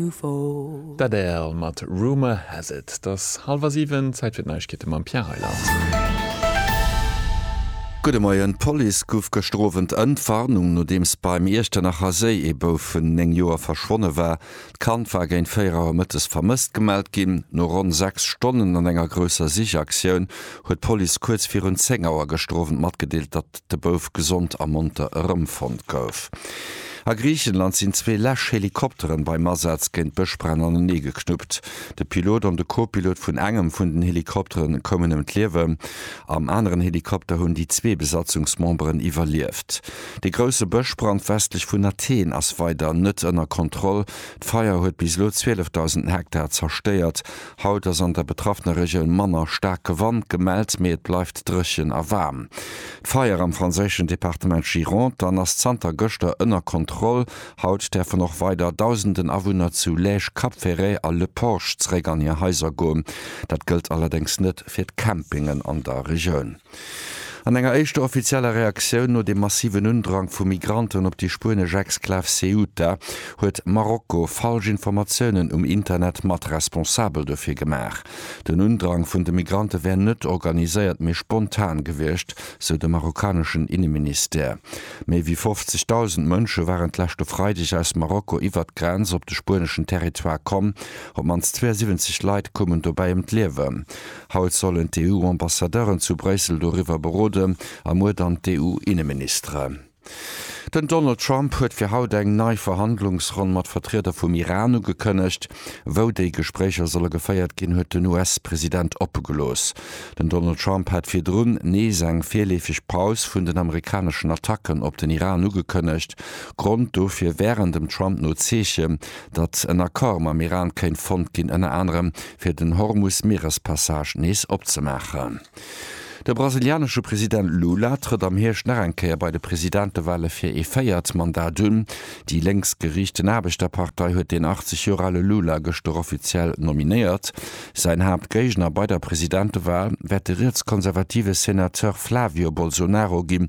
Ufo. D'Adele mat Rumour has it. Et ass hallwer siwen, Zäit fir d'Neiegkeete mam Pierre Reyland. Gudde Moien, D'Police gouf gëschter Owend Entwarnung, nodeems beim Iechternacher Séi ee Bouf vun 9 Joer verschwonne war. D'Kand war géint 4 Auer mëttes vermësst gemellt ginn. No ronn 6 Stonnen an enger grousser Sichaktioun huet d'Police kuerz virun 10 Auer gëschter Owend matgedeelt, datt. de Bouf gesond a monter erëmfonnt gouf. A Griichenland sinn zwee Läsch-Helikopteren beim Asaz géint Bëschbränn anenee geknuppt. De Pilot an de Co-Pilot vun engem vun den Helikoptere koumen ëm d'Liewen. Am aneren Helikopter hunn déi zwee Besatzungsmemberen iwwerlieft. Dee grousse Bëschbrand westlech vun Athen ass weider net ënner Kontroll. D'Feier huet bis elo 12.000 Hektar zerstéiert Haut ass an der betraffener Regioun manner staarke Wand gemellt, mee et bleift dréchen a waarm. D'Feier am franséischen Departement Gironde an ass zanter gëschter ënner Kontroll. Haut däerfen och weider Dausenden Awunner zu Lège, Cap-Ferret a Le Porge zeréck an hir Haiser goen. Dat gëllt allerdéngs net fir d'Campingen an der Regioun. An enger éischter offizieller Reaktioun no dem massiven Undrang vu Migranten op déi spuenesch Exklav Ceuta huet Marokko falsch Informatiounen um Internet mat responsabel dofir gemaach. Den Undrang vun de Migrante wär net organiséiert, mee spontan gewiescht, sou de marokkaneschen Inneministère. Méi wéi 50.000 Mënsche waren d'leschte Freideg aus Marokko iwwert d'Grenz op de spueneschen Territoire komm. Op d'mannst 72 Leit koumen dobäi ëm d'Liewen. Haut sollen d'EU-Ambassadeuren zu Bréissel doriwwer beroden a muer dann d'EU-Inneministere. Den Donald Trump huet fir haut eng nei Verhandlungsronn mat Vertrieder vum Iran ugekënnegt. Wou déi Gespréicher solle geféiert ginn, huet den US-President oppe gelooss. Den Donald Trump hat virdrun nees eng virleefeg Paus vun den amerikaneschen Attacken op den Iran ugekënnegt. Grond dofir wären dem Trump no Zeechen, datt en Accord mam Iran kéint fonnt ginn, ënner anerem fir den Hormus-Mierespassage nees opzemaachen. De brasilianesche President Lula trëtt am Hierscht nach eng Kéier bei de Presidentewale fir ee véiert Mandat un. Déi lénks geriichten Aarbechterpartei huet den 80 Joer ale Lula gëschter offiziell nominéiert. Säin Haaptgéigner bei der Presidentewal wäert de rietskonservative Senateur Flavio Bolsonaro ginn,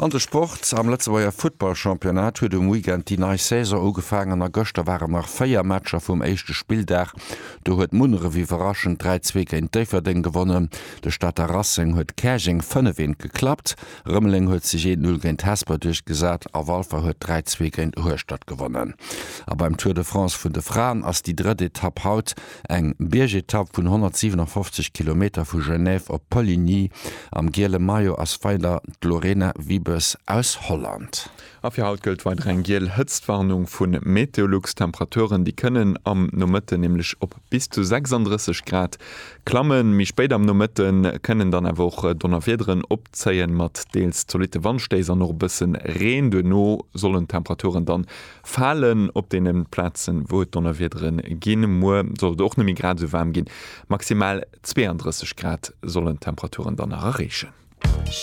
An de Sport, Am Lëtzebuerger Futtball-Championnat huet um Weekend déi nei Saison ugefaangen a gëschter waren nach 4 Matcher vum éischte Spilldag. Do huet Munneref iwwerraschend 3, 2 géint Déifferdeng gewonnen, de Stater Racing huet Käerjeng 5, 1 geklappt, Rëmeleng huet sech 1, 0 géint Hesper duerchgesat a Walfer huet 3, 2 géint Hueschtert gewonnen. A beim Tour de France vun de Fraen ass déi drëtt Etapp haut. Eng Biergetapp vun 157 Kilometer vu Genève op Poligny. Am giele Maillot ass weider d'Lorena Wiebes aus Holland. A fir haut gëllt weider eng giel Hëtztwarnung vu Meteolux. D'Temperaturen, déi kënnen am Nomëtten nämlech op bis zu 36 Grad klammen. Méi spéit am Nomëtte kënnen dann awer och Donnerwiederen opzéien, mat deels zolitte Wandstéiss an och e bësse Reen. Duerno sollen d'Temperaturen dann Falen op deene Plazen, wou et Donnerwiedere ginn. Muer soll et och net méi grad esou waarm ginn, maximal 32 Grad sollen d'Temperaturen dann nach erreechen.